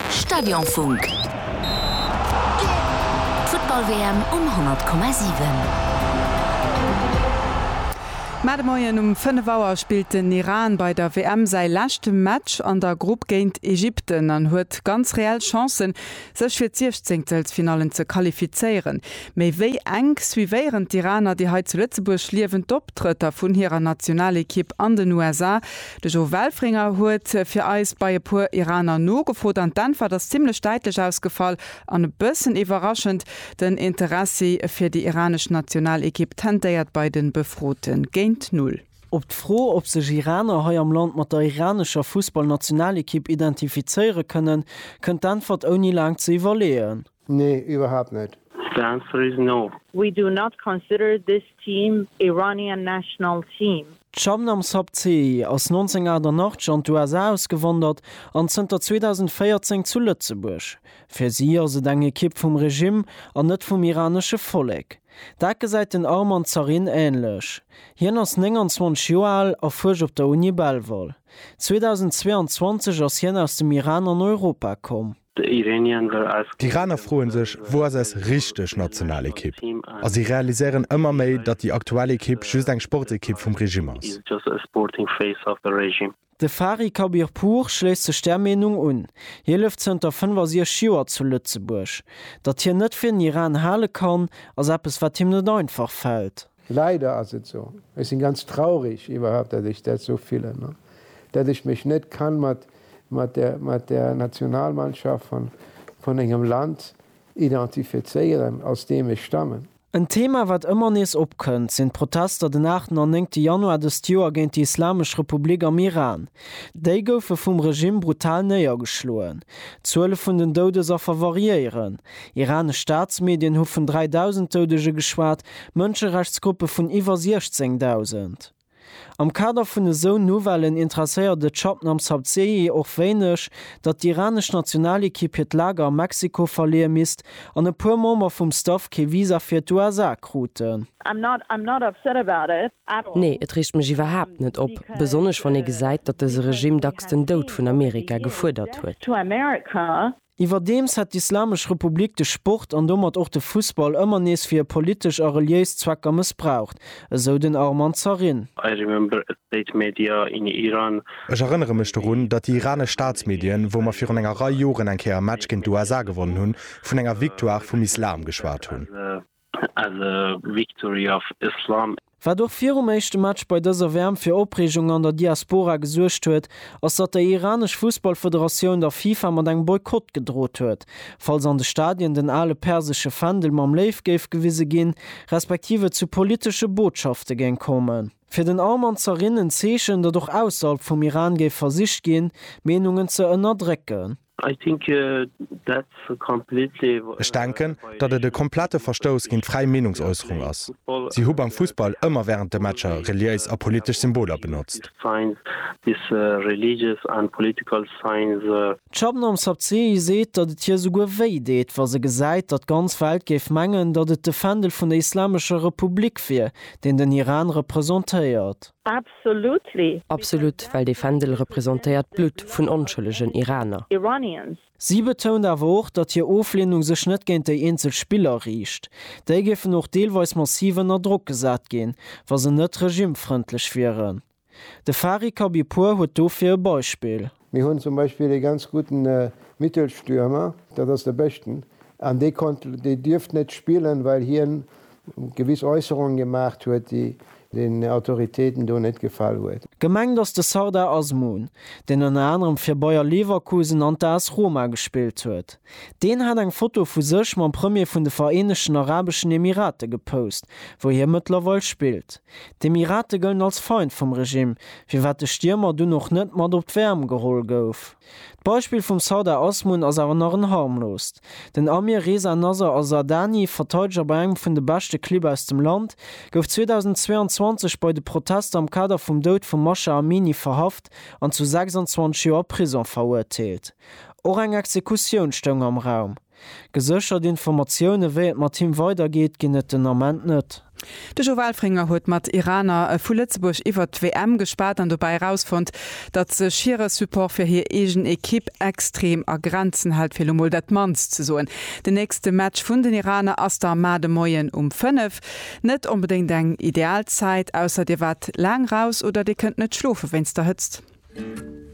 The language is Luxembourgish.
Stadionfunk. D'Futtball-WM um 100,7. Mä de Moien um 5 Auer spillt den Iran bei der WM säi leschte Match an der Grupp géint Ägypten an huet ganz reell Chancen, sech fir d'Siechzéngtelsfinallen ze qualifizéieren. Méi wéi enk suivéieren d'Iraner déi hei zu Lëtzebuerg liewend d'Optrëtter vun hirer Nationalekipp an den USA. De Jo Welfringer huet fir eis bei e puer Iraner nogefrot an d'Äntwert ass zimlech däitlech ausgefall an e bëssen iwwerraschend, Den Interessi fir déi iranesch Nationalekipp tentéiert bei de Befrote géint null. Op d'Fro, ob sech Iraner hei am Land mat der iranescher Fussballnationalekipp identifizéiere kënnen, kënnt d'Äntwert ouni laang ze iwwerleeën. Nee, iwwerhaapt net. The answer is no. We do not consider this team Iranian national team. D'Shabnam Sabzehi ass 1988 an d'USA ausgewandert an zënter 2014 zu Lëtzebuerg. Fir si ass et eng Ekipp vum Regimm an net vum iranesche Vollek. Dat gesäit den Arman Zarin änlech. Hien ass 29 Joer al a fuerscht op der Uni Belval. 2022 ass hien aus dem Iran an Europa komm. The Iranians are asking. D'Iraner froen sech, wou ass eis richteg national Ekipp? A si realiséieren ëmmer méi, datt déi aktuell Ekipp just eng Sportekipp vum Regime ass. De Fari Khabirpour schléisst sech där Meenung un. Hie lëft zënter 65 Joer zu Lëtzebuerg. Datt hien net fir den Iran hale kann, ass eppes wat him net einfach fält. Leider ass et sou. Ech sinn ganz traurig iwwerhaupt dat ech dat sou fillen an dat ech mech net kann mat mat der Nationalmannschaft van van engem Land identifezéieren aus deem ech stammen. En Thema wat ëmmer nees opkënnt, sinn d'Protester den aachten an néngte Januar dëst Joer géint déi Islamesch Republik am Iran. Déi goufe vum Regimm brutal néiergeschloen. D'Zuele vun den Doudesaffer variéieren. Iranesch Staatsmedien hu vun 3.000 Doudege geschwat, Mënscherechtsgruppe vun iwwer 16.000. Am Kader vun esou Nouvellen interesséiert et Shabnam Sabzehi och wéineg, datt d'iranesch Nationalekipp hiert Lager a Mexiko verleeë misst an e puer Member vum Staff kee Visa fir d'USA kruten. Nee, et reegt mech iwwerhaapt net op, besonnesch wann ee gesäit, datt dëse Regime dacks den Doud vun Amerika gefuerdert huet. Iwwerdeems hätt d'Islamesch Republik de Sport an domat och de Fussball ëmmer nees fir hir politesch a reliéis Zwecker mëssbraucht, esou den Arman Zarin. I remember a state media in Iran. Ech erënnere mech dorun, datt déi iranesch Staatsmedien, wou mer virun enger Rei Joren eng Kéier e Match géint d'USA gewonnen hunn, vun enger Victoire vum Islam geschwat hunn. as a victory of Islam. Wat och virum éischte Match bei dëser WM fir Opreegung an der Diaspora gesuergt huet, ass datt déi iranesch Fussballfederatioun der FIFA mat engem Boykott gedroht huet, falls an de Stadien den ale persesche Fändel mam Léiw géif gewise ginn, respektiv et zu politesche Botschafte géing kommen. Fir den Arman Zarin en Zeechen, datt och ausserhalb vum Iran géif versicht ginn, Meenungen ze ënnerdrécken. I think that's a completely. Ech denken, datt et e komplette Verstouss géint d'fräi Meenungsäusserung ass. Si hu beim Fussball ëmmer wärend de Matcher reliéis a politesch Symboler benotzt. D'Shabnam Sabzehi seet, datt et hir souguer wéi deet, wa se gesäit, datt d'ganz Welt géif mengen, datt et de Fändel vun der Islamescher Republik wier, deen den Iran representéiert. Absolut, well dee Fändel representéiert d'Blutt vun onschëllegen Iraner. Si betount awer och, datt hir Ofleenung sech net géint déi eenzel Spiller riicht. Déi géifen och deelweis massiv ënner Drock gesat ginn, wa se net regimefrëndlech wieren. De Fari Khabibpour huet dofir e Beispill. Mir hunn zum Beispill ee ganz gudden Mittelstürmer, dat ass de Bëschten, an dee konnt, dee dierft net spillen, well hien gewiss Äusserungen gemaacht huet, déi den Autoritéiten do net gefall huet. Gemengt ass de Sardar Azmoun, deen ënner anerem fir Bayer Leverkusen an d'AS Roma gespillt huet. Deen hat eng Foto vu sech mam Premier vun de Vereenegten Arabeschen Emirate gepost, wou hie mëttlerweil spillt. D'Emirate gëllen als Feind vum Regime, firwat de Stiermer dunn och net mat op d'Wärm geholl gouf. D'Beispill vum Sardar Azmoun ass awer nach en harmloost. Den Amir Reza Nasser Azardani, Verteideger bei engem vun de beschte Clibb aus dem Land, gouf 2022 bei de Protester am Kader vum Doud vum Masha Amini verhaft an zu 26 Joer Prisong verurteelt. Och eng Exekutioun stoung am Raum. Geséchert Informatioune wéi et mat him weider geet ginn et den Ament net. De Jo Welfringer huet mat Iraner vu Lëtzebuerg iwwert d'WM gespat an dobäi erausfonnt, datt sech hire Support fir hir eegen Ekipp extrem a Grenzen hält, fir lo mol dat mannst ze soen. Den nächste Match vun den Iraner ass da mar de Moien um 5. Net onbedéngt eng ideal Zäit, ausser Dir waart laang raus oder Dir kënnt net schlofe wéinst der Hëtzt.